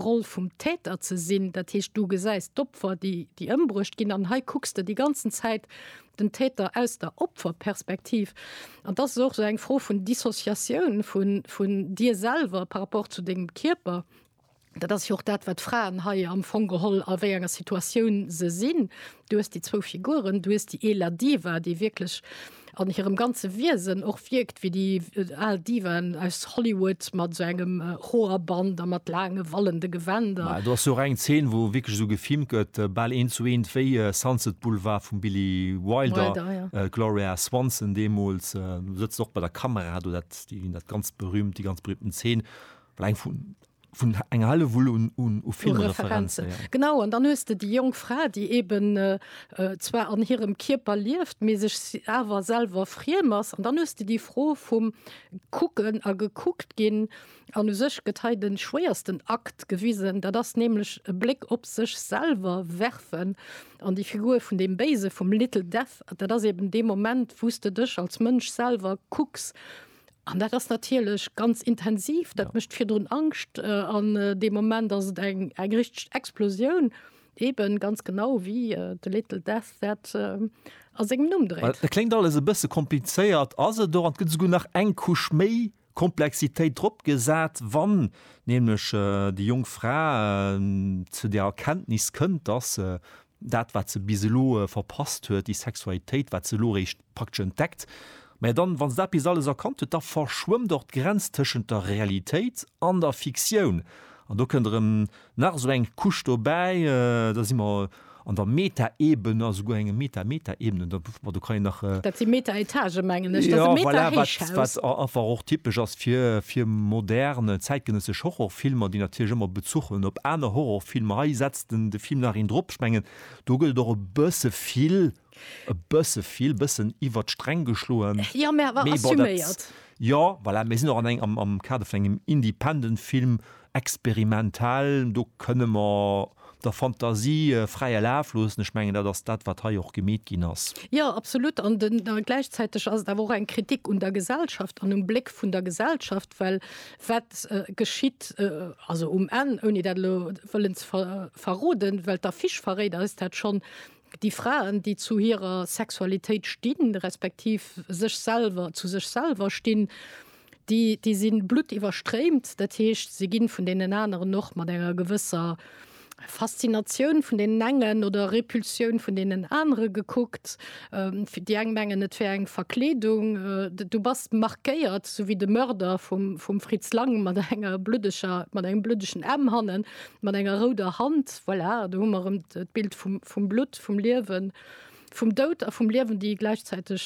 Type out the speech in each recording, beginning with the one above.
Roll vum Täter ze sinn. Dat heescht, du gesäis d'Opfer, déi déi ëmbruecht ginn, an hei kucks de déi ganzen Zäit den Täter aus der Opferperspektiv. An dat ass och esou eng Fro vun Dissociatioun vu vun dir selwer par rapport zu dengem Kierper. Dat ass jo och dat, wat d'Fraen hei am Fong geholl a wéi enger Situatioun se sinn. Du hues déi zwou Figuren, du hues déi ee La Diva, déi wierklech an hirem ganze Wiesen och wierkt wéi déi al Divaen aus Hollywood mat esou engem Hoerband a mat laange wallende Gewänder. Ma do ass jo och eng Zeen, wou wierklech esou gefilmt gëtt, bal eent zu eent wéi Sunset Boulevard vum Billy Wilder. Wilder, ja. D'Gloria Swanson deemools sëtzt och bei der Kamera do, dat, déi ganz berühmt, déi ganz berühmten Zeen, well eng vun, vun enger helle Wull un, un u Filmreferenzen. Ja. Genau, an dann hues de déi jonk Fra, déi eben äh, äh zwar an hirem Kierper lieft, mee sech awer selwer friem ass. An dann hues de déi Fro vum Kucken a gekuckt ginn an u sech gëtt hei den schwéiersten Akt gewisen. Dat ass nämlech e Bléck op sech selwer werfen an déi Figur vun dem Béise vum Little Death. Dat ass eben dee Moment, wou s de dech als Mënsch selwer kucks. An dat ass natierlech ganz intensiv, dat mécht virdrun Angscht an dee Moment ass et eng eng richteg Explosioun, ebe ganz genau wéi de Little Death dat a sengem Numm dréit. Dat kléngt alles e bësse komplizéiert, ass et och, an et gëtt esouguer nach eng Couche méi Komplexitéit drop gesat, wann nämlech déi jonk Fra zu der Erkenntnis kënnt, dass se dat wat se bis elo verpasst huet, déi Sexualitéit wat se elo eréischt praktesch entdeckt. Mä dann, wa se dat bis alles erkannt huet, da verschwëmmt och d'Grenz tëschent der Realitéit an der Fiktioun. An do kënnt erëm nach esou eng Couche dobäi, da si mer an der Meta-Ebene, a souguer enger Meta-Meta-Ebene, da pff, ma do kann een nach. Dat si Meta-Etagë mengen ech, dat ass e Meta-Héichhaus. Wat, wat einfach och typesch ass fir, fir modern, zäitgenëssesch Horrorfilmer, déi natierlech ëmmer Bezuch hunn op aner Horrorfilmer. Hei setzt. den de Film nach een drop schmengen do gëllt och e bësse vill e bësse vill bëssen iwwert d'Sträng geschloen. Ja, mä awer assuméiert. Jo, voilà, mir sinn och an engem am am Kader vun engem independent Film, experimentell, do kënne mer der Fantasie fräie Laf loossen. Ech mengen dat ass dat wat hei och gemeet ginn ass. Jo, absolut, an den gläichzäiteg ass et awer och eng Kritik un der Gesellschaft an um Bléck vun der Gesellschaft, well Wat geschitt also um Enn, ouni dat elo wëllen ze verroden, well d'Affiche verréit eis dat schonn, Déi Fraen, déi zu hirer Sexualitéit stinn, respektiv sech selwer, zu sech selwer stinn, déi, déi si bluttiwwerstréimt. Dat heescht, se gi vun deenen aneren och mat enger gewësser, Faszinatioun vun deenen engen oder Repulsioun vun deenen anere gekuckt. Déi eng mengen, et wär eng Verkleedung, du bass markéiert, esou wéi de Mörder vum Fritz Lang mat enger bluddeger, mat engem bluddegen M hannen, mat enger rouder Hand. Voilà, do hu mer erëm d'Bild vum Blutt, vum Liewen, vum Doud a vum Liewen, déi gläichzäiteg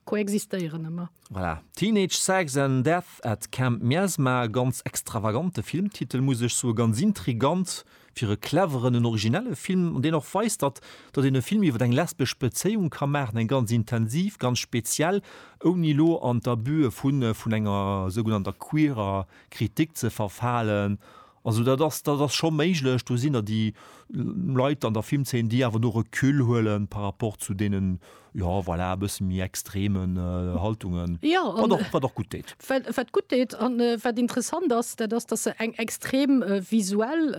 koexistéieren ëmmer. Voilà, Teenage Sex and Death at Camp Miasma, e ganz extravagante Filmtitel muss ech soe, ganz intrigant fir e cleveren, en originelle Film an deen och weist, datt datt een e Film iwwer eng lesbesch Bezéiung ka maachen, eng ganz intensiv, ganz speziell, ouni elo an d'Abusë vu vun enger sougenannter queerer Kritik ze verfalen. Also dat ass, dat ass scho méiglech. Do sinn der déi Leit an der Filmzeen, déi awer do Recul huelen par rapport zu deenen, jo, voilà, e bësse méi extremen Haltungen, wat och, wat och gutt deet. Jo, an wat gutt deet an wat interessant ass, dat ass, datt se eng extrem visuell,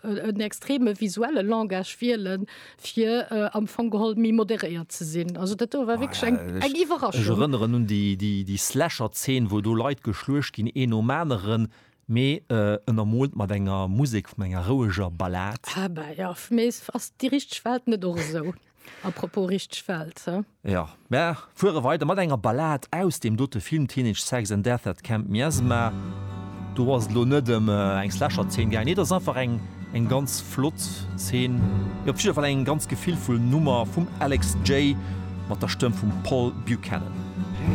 en extreme visuelle Langage wielen, fir am Fong geholl méi moderéiert ze sinn. Also dat do war wierklech eng Iwwerraschung. Ech erënneren un déi, déi, déi Slasher-Zeen, wou do Leit geschluecht ginn, een nom aneren, Mee ënnermoolt mat enger Musek vun enger roueger Ballad. Ah bah ja, fir mech ass ass déi richteg Welt net och esou. A propos richteg Welt, he? Jo, mer fuere weider mat enger Ballad aus deem dote Film Teenage Sex and Death at Camp Miasma. Do ass et elo net ëm eng Slasher-Zeen gaangen, nee, et ass einfach eng eng ganz flott Zeen, mee op jidder Fall eng ganz gefillvoll Nummer vum Alex Jae mat der Stëmm vum Paul Buchanan.